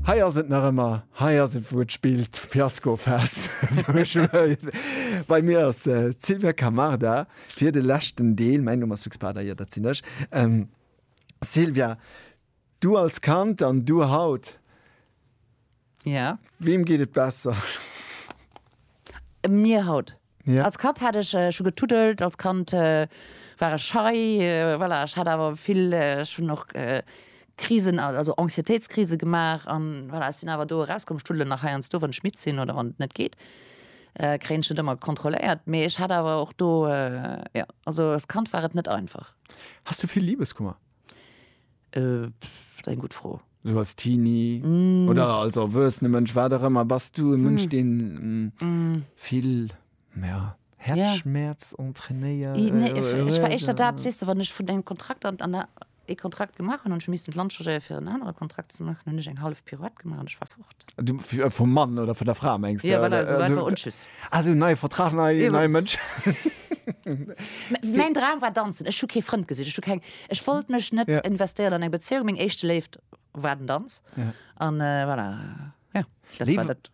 Hei ass et nach ëmmer, hei ass et wou et spillt, Fiaskofest. Bei mir ass d'Silvia Camarda fir de leschten Deel. Mäin Numm ass Luc Spada, jo dat sinn ech. Silvia, du als Kand an du haut. Ja. Weem geet et besser? Mir haut. Ja. Als Kand hat ech schon getuddelt, als Kand war ech schei, voilà, ech hat awer vill, ech hun och Krisen, also Anxiétéitskrise gemaach an voilà, ech sin awer do eraus komm. Ech tuddelen nach heiansdo wann ech midd sin oder wann et net geet, kréien ech net ëmmer kontrolléiert, mee ech hat awer och do, jo, also als Kand war et net einfach. Has du vill Libeskummer? Äh, eng gutt Fro. Sou als Teenie oder als erwuessene Mënsch, wat och ëmmer, bass du e Mënsch, deen vill, ja, Häerzschmäerz entrainéiert? Nee, ech war éischter dat, weess de, wann ech vun engem Kontrakt an an ee Kontrakt gemaach hunn an ech hu missen d'Land changéiere fir en anere Kontrakt ze maachen, hunn ech eng hallef Pirouette gemaach an ech war fort. Du, äh, vum Mann oder vun der Fra mengst de? Ja, voilà, esou einfach Unschiss. Ah, esou neie Vertrag, nei, ja. nei Mënsch. Mäin Dram war danzen. Ech hu kee Frënd gesinn. Ech hu keng, ech wollt mech net ja. investéieren an eng Bezéiung. Meng éischte Léift war den Danz. Ja. An äh, voilà. Ja, dat Lewe. war dat.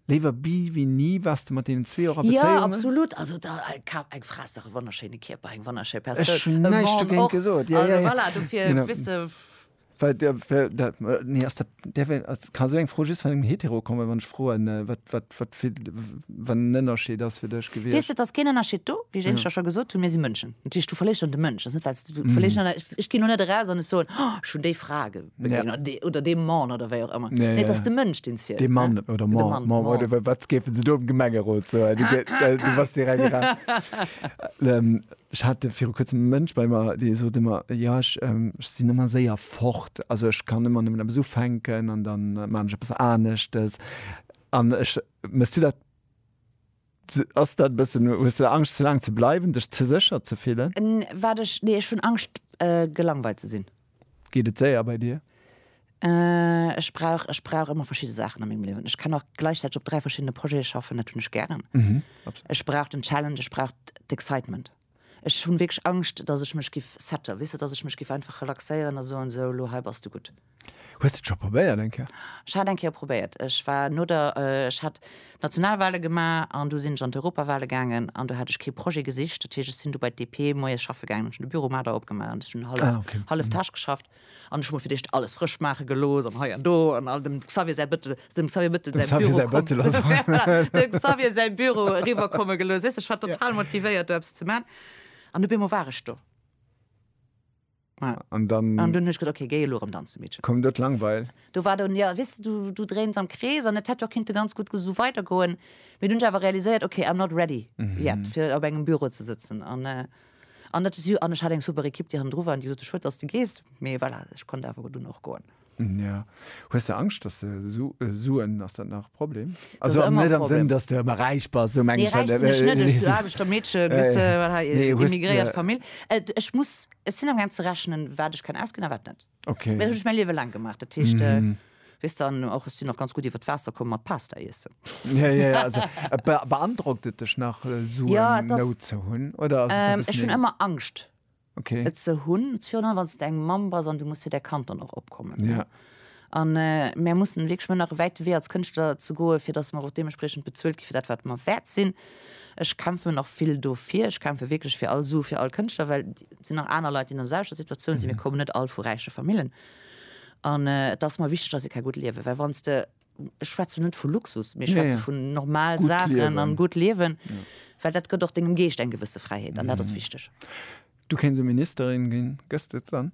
Léiwer bi wéi ni wars de mat deenen zwee och a Bezéiungen? Ja, absolut. Also da äh, kap eng Fra ass e wonnerschéine Kierper, eng wonnerschéi Persoun. Ech hun näischt dogéint gesot. Ja, also, ja, ja. Voilà, dofir, genau. Wisst, Well der, well der, nee, ass dat, der well, ass, kann esou eng Fro just vun engem Hetero kommen, wann ech froen, äh, wat, wat, wat fir, wann en Ënnerscheed ass fir dech Weess gewiescht? de, et ass keen Ënnerscheed do, wéi ech éinescht da scho gesot hunn, mir si Mënschen. Natierlech, du verléiers dann de Mënsch, ass net, well s du, du verléiers dann, ech, ech ginn elo net eraus an ech soen, oh, ech hunn déi Fra ge, Ja. begéint, oder dee, oder dee Mann, oder wéi och ëmmer. Ja, Nee, et ja. ass de Mënsch, deen zielt, Dee Mann, ne? oder De Mann, Mann, Mann, Mann. oder wa- wat géifen se do am Gemengerot soen? Du, gé- äh, du bass direkt ra. Ähm, Ech hat viru kuerzem e Mënsch bei mer, dee sot ëmmer, Jo, ech sinn ëmmer séier fort. Also ech kann ëmmer nëmmen eppes ufänken an da maachen ech eppes aneschtes. An ech, méchs du dat, ass dat e bëssen, hues du da Angscht ze laang ze bleiwen, dech ze sécher ze fillen? Wat ech, nee, ech hunn Angscht gelangweilt ze sinn. Geet et séier bei dir? Ech brauch, ech brauch ëmmer verschidde Saachen a mengem Liewen. Ech kann och gläichzäiteg op dräi verschiddene Projete schaffen, dat hunn ech gären. Ech brauch den Challenge, ech brauch d'Excitement. Ech hunn wierklech Angscht, datt ech mech giff setten, weess de, datt ech mech giff einfach relaxéieren a soen, esou elo hei bass du gutt. Hues de et scho probéiert eng Kéier? Ech hat eng Kéier probéiert, ech war no der, ech hat d'Nationalwale gemaach an du sinn ech an d'Europawale gaangen an do hat ech kee Projet gesicht. Dat heescht, ech sinn du bei d'DP moies schaffe gaangen, hunn de Büro mat der opgemaach an ech hunn hallef, hallef Tâche geschafft an ech hu mer fir d'éischt alles frësch maache gelooss an hei an do an all dem Xavier säi Bëttel, dem Xavier Bëttel säi Büro, säi Bëttel ass, voilà, dem Xavier säi Büro eriwwerkomme gelooss. Weess de, ech war total motivéiert do eppes ze maachen an op eemol war ech do. Ja. An dann. An dunn ech gët okay, géi elo rëm danze Meedchen. Komm dat langweil. Do war dann ja wis du du dréins am Krees an et hätt jo kinnte ganz gutt gesu weider goen, mee dunn ech awer realiséiert okay I'm not ready yet fir op engem Büro ze sëtzen an an dat si an ech hat eng super Ekipp déi hannendru war an déi gesot huet schued dass de gees, mee voilà ech konnt awer dunn och goen. Ja. Hues de Angscht, dass de Su äh, Suen, ass dat nach e Problem? Das Also ist am, immer net ein am Sënn, Problem. dass de ëmmer räich bass, sou meng Nee, ech dat. räich sinn ech net, ech si Aarbechtermeedche, bis, äh, wat hei, Nee, hues immigréiert de. Famill. Äh, d- ech muss, ech sinn am gaang ze rechnen, wat ech kann ausginn a wat net. Well Okay. dat hunn ech mäi Liewe laang gemaach, dat heescht, äh, weess de, an och, ech sinn och ganz gutt iwwer d'Waasser komm mat Pasta iessen. Ja, ja, ja, also äh, be beandrockt et dech nach, äh, Suen Ja, et ass, Nout ze hunn, oder ass et e ähm, ech bëssen hunn eng. ëmmer Angscht. okay. et ze hunn, surtout wann du eng Mamm bass an du muss fir däi Kand dann och opkommen. Ja. An äh, mir mussen wirklich mir nach wäit Wee als Kënschtler ze goe fir dass mer och deementsprechend bezuelt gi fir dat wat mer wäert sinn. Ech kämpfe mir nach vill dofir. Ech kämpfe wirklich fir all Su fir all Kënschtler, well sinn nach aner Leit, déi an der selwechter Situatioun sinn. Mir mhm. kommen net all vu räiche Famillen. An äh, et ass mer wichteg, dass se ka gutt liewe, well wann de ech schwätzen net vu Luxus, mir schwätzen vu normal Sachen an gutt liewen, well dat gëtt och dengem Geescht eng gewësse Fräiheet an dat ass wichteg. Du kéins e Ministerin ginn, gëss de et dann?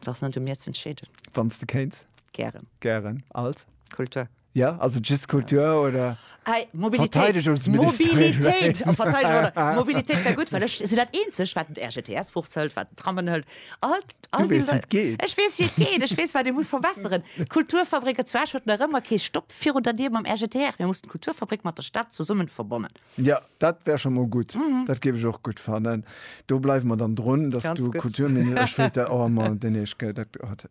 Dat ass net u mir z'entscheeden. Wann s de kéins? Gären. Gären. Als? Kultur. Jo, ass et just Kultur oder? Hey, Mobilitéit. Verteidigungsministerin. Mobilitéit. Oh, Verteidigung, oder? Mobilitéit wär gut, well ech sinn dat eenzeg, wat den RGTS Buch hëlt, wat den Trammen hëlt. All, all Du weess, wie et geet. Ech weess, wie et geet. Ech weess, wat ee muss verbessern. Kulturfabrik, et zwar huet nach ëmmer kee Stopp virun der Dier mam RGTR. Mir mussen d'Kulturfabrik mat der Stad zesummen verbonnen. Ja, dat wär scho mol gutt. Dat géif ech och gutt fannen. Do bleiwe mer dann drun, dass Ganz du gut. Kulturminister. Ech wéilt dat. Oh, Mann, den Eesch, gell, dat. Oh, dat.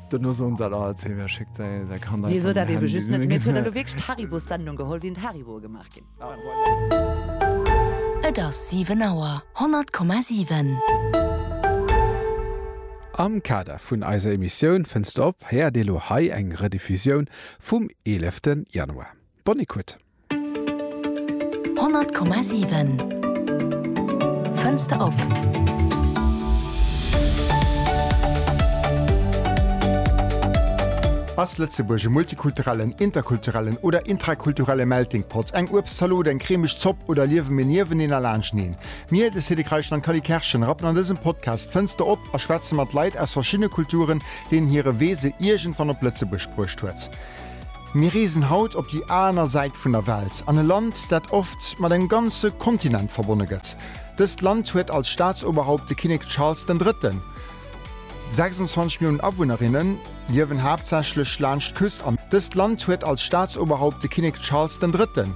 Dat ass ons dat alt, hee wee schéckt säi Kand einfach mat dem Handy? Mir hunn elo wierklech d'Haribo-Sendung geholl, wéi en Hariboe gemaach ginn. Et ass 7 Auer 100,7. Am Kader vun eiser Emissioun Fënns de op! héiert Dir elo hei eng Rediffusioun vum 11 Januar. Bonne écoute. 100,7 Fënster op. Ass Lëtzebuerg e multikulturellen, interkulturellen oder intrakulturelle Melting Pot? Eng Uebstzalot, eng cremeg Zopp oder liewe mir nieweneen a laanschneen? Mir, de Cédric Reichel an d'Cally Kerschen, rappen an dësem Podcast d'Fënster op a schwätze mat Leit aus verschiddene Kulturen, deenen hire Wee se iergendwann op Lëtzebuerg bruecht huet. Mir reesen haut op déi aner Säit vun der Welt, an e Land, dat oft mat engem ganze Kontinent verbonne gëtt. Dëst Land huet als Staatsoberhaupt de Kinnek Charles den Drëtten. 26 Milliounen Awunnerinne liewen haaptsächlech laanscht d'Küst an dëst Land huet als Staatsoberhaupt de Kinnek Charles den Drëtten.